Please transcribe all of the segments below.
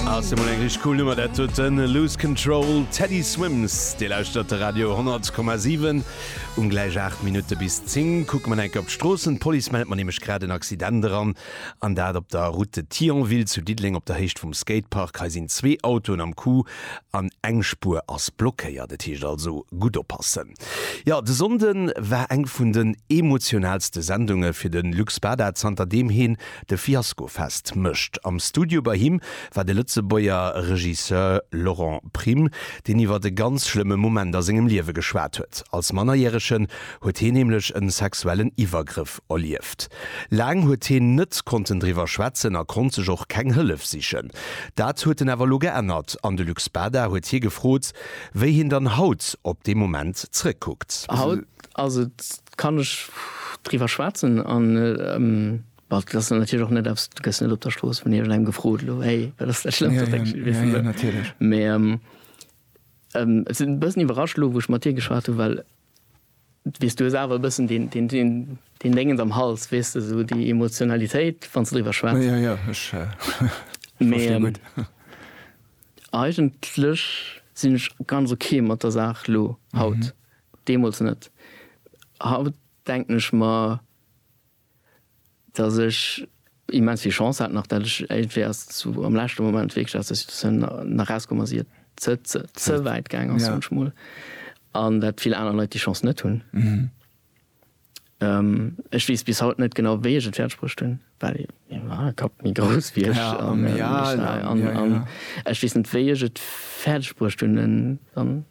Ass emol eng rich cool Nummer dat huet den Lose Control Teddy Swims. Dir lauschtert de Radio 10,7. Um gläich 8 Minutte bis 10 kucke mer nach eng Kéier op d'Stroossen. D'Police mellt mer nämlech grad en Accident eran, an dat op der Route de Thionville zu Diddeleng op der Héicht vum Skatepark. Hei sinn zwee Autoen am Coup an eng Spuer ass blockéiert. Et heescht also gutt oppassen. Jo, de Sonnden war eng vun den emotionalste Sendunge fir de Luc Spada zanter deem hien De Fiasko fest mécht. Am Studio bei him war de Lëtzebuerger Regisseur Laurent Prim, deen iwwer e ganz schlëmme Moment a sengem Liewe geschwat huet. Als Mannerjäregen huet heen nämlech e sexuellen Iwwergrëff erlieft. Laang huet heen net konnten driwwer schwätzen a konnt sech och keng Hëllef sichen. Dat huet en awer elo geännert an de Luc Spada huet hie gefrot, wéi heen dann haut op dee Moment zrëckkuckt. Haut ass et Kann ech driwwer schwätzen an well dat ass natierlech och net eppes, du gëss net op der Strooss vun iergend engem gefrot, elo héi, wat ass dat Schlëmmst, wat denkst du? Jo, jo, natierlech. Mä et sinn e bëssen iwwerrascht elo, wou ech mat dir geschwat hunn, well du weess, du hues awer e bëssen deen, deen, deen Déngens am Hals, weess de, esou déi Emotionalitéit, wann s de driwwer schwätz. Jo, jo, ech verstinn gutt. Mä eigentlech sinn ech ganz ok mat der Saach elo haut. Deemools net. Haut denken ech mer, datt ech immens vill Chance hat nach, datt ech iergendwéi aus zu am leschte Moment wierklech aus der Situatioun nach erauskomm ass, ier et ze wäit gaang ass munchmol, an datt vill aner Leit déi Chance net hunn. Ech weess bis haut net genau, wéi ech et fäerdeg bruecht hunn, well ee Kapp méi grouss wéi ech an ech weess net, wéi ech et fäerdeg bruecht hunn, en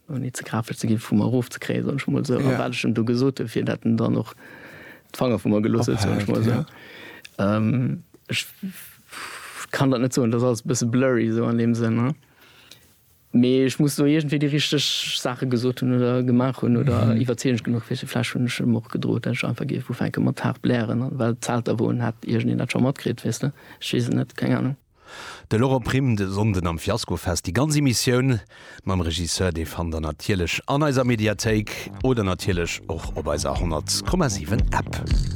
Ouni ze grapeg ze gi vu mer erofzekréien, soen ech mol esou, a wat ech em do gesot hunn, fir dat en dann och d'Fanger vu mer gelooss huet, soen ech mol esou. Ech kann dat net soen, et ass alles e bësse blurry esou an deem Sënn. Mee ech muss do iergendwéi déi richteg Saache gesot hunn oder gemaach hunn oder iwwerzeegend genuch fir se. Vläch hunn ech em och gedroot, dat ech einfach géif ufänke mat haart blären, well d'Zelter, wou en hat, iergendeen dat scho matkritt, weess de. Ech weess et net, keng Anung. De Laurent Prim de Sonnden am Fiaskofest. Déi ganz Emissioun mam Regisseur, déi fannt der natierlech an eiser Mediathéik oder natierlech och op eiser 100,7 App.